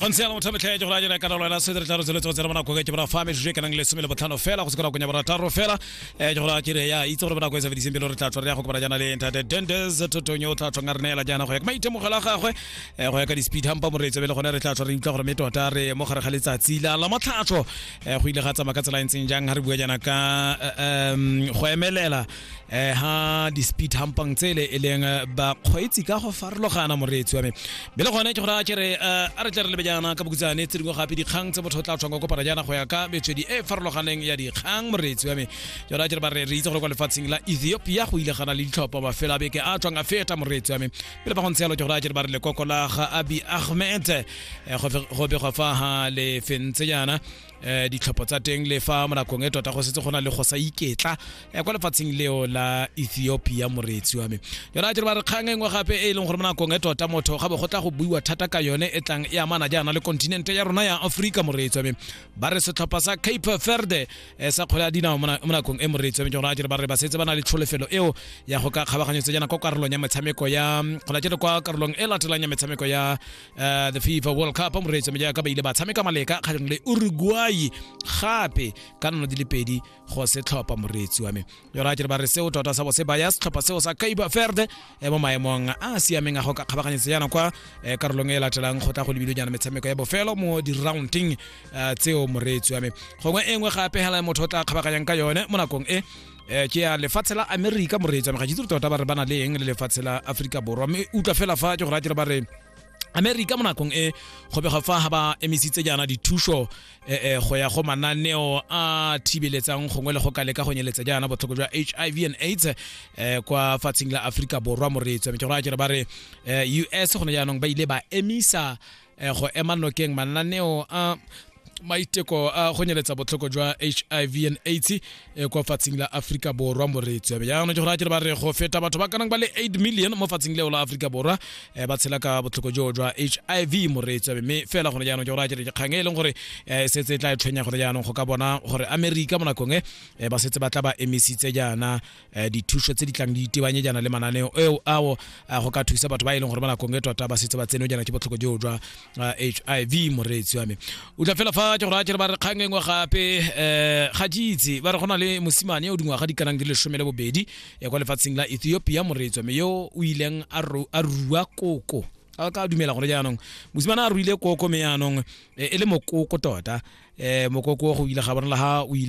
go ntse yana mothametlhae ke go rajela ka nalo ena se re tla re tsweletse go tsena bonako ke bona fa me juje kanang le somele botlhano fela go se ka go nya bona taro fela eh ke go ra ke re ya itse gore bonako e sa fediseng pele re tla tswa re ya go kopana jana le ntate Dendes totonyo o tla tswa ngare nela jana go ya ka maitemogelo a gagwe eh go ya ka di speed hampa moreetse bele gone re tla tswa re utlwa gore me tota re mo gare ga letsatsi la la motlhatsho eh go ile ga tsamaya ka tsela e ntseng jang ha re bua jana ka eh, em go emelela eh ha di speed hampang tsele e leng eh, ba kgweetsi ka go farologana moreetsi wa me be le gone ke gore a kere eh, a re tle re lebe jaana ka bokutsane tse dingwe gape dikgang tse motho o tla tshwang ka kopana jaana go ya ka metswedi e e farologaneng ya dikgang moreetsi wa me ke gore a kere ba re re itse gore kwa lefatsheng la ethiopia go ile gana le ditlhopha mafelo a beke a tswang a feta moreetsi wa me pele ba go ntse yalo ke gore a kere ba re lekoko la ga abi ahmed eh, go fe- go begwa fa ha le fentse jaana eh ditlhopho tsa teng le fa mo nakong e tota go setse go na le go sa iketla eh, kwa lefatsheng leo la ethiopia moreetsi wa me yona a dire ba re kgang e nngwe gape e e leng gore mo nakong e tota motho ga bo go tla go buiwa thata ka yone e tlang e amana jaana le kontinente ya rona ya aforika moreetsi wa me ba re setlhopha sa cape verde eh, sa kgwele ya dinao mo na- mo nakong e moreetsi wa me jona a dire ba re ba setse ba na le tlholefelo eo ya go ka kgabaganyetsa jaana kwa karolong ya metshameko ya mm, go latele kwa karolong e latelang ya metshameko ya uh, the fifa world cup moreetsa me jaaka ba ile ba tshameka maleka kgatlhanong le uruguay gape ka nono di le pedi go setlhopha moreetsi wa me yora ke re ba re seo tota sa bo se baya setlhopha seo sa kaiba verde eh, mo maemong a a siameng a go ka kgabaganyetsa yana kwa eh, karolong e e latelang go tla go lebile jana metshameko ya bofelo mo di-rounding eh, tseo moreetsi wa me gongwe e nngwe gape hela motho o tla kgabaganyang ka yone mo nakong e eh ke ya lefatshe la america moreetsa ga itse tota ba re ba na le eng le lefatshe la aforika borwa mme utlwa fela fa ke go ratile ba re america mo nakong e go bega fa ga ba emisitse jaana dithuso eh, eh, go ya go mananeo a thibeletsang gongwe le go ka leka go nyeletsa jaana botlhoko jwa hiv and aids eh, kwa fatsheng la aforika borwa moreetso mme ke go raya kere ba re eh, us gone jaanong ba ile ba emisa eh, eh, go ema nokeng mananeo a maiteko a go nyeletsa botlhoko jwa hiv and aids eh, kwa fatsing la aforika borwa moreetsi yabe jaanong ke gore a kere ba re go feta batho ba kanang ba le 8 million mo fatsing leo la aforika borwa eh, ba tshela ka botlhoko joo jwa hiv moreetsi yabe mme fela gone jaanong ke gore a kere kgang e leng gore eh, e setse e tla e tshwenya gore jaanong go ka bona gore amerika mo nakong e ba setse ba tla ba emisitse jaana um dithuso tse di tlang di itebanye jana le mananeo eo ao eh, go ka thusa batho ba e leng gore ba nakong e tota ba setse ba tsene jana ke botlhoko joo jwa h i v moreetsi wa me o tla fela fa ke gore a kere ba re kgang engwe gape um ga ke itse ba re go na le mosimane o dingwaga di kanang di lesome le bobedi ya kwa lefatsheng la ethiopia moreetsi wa me yo o ileng a rua koko a ka dumela gore jaanong mosimane a ruile koko me jaanong e le mokoko tota um mokoko go ile ga bonala ga o ile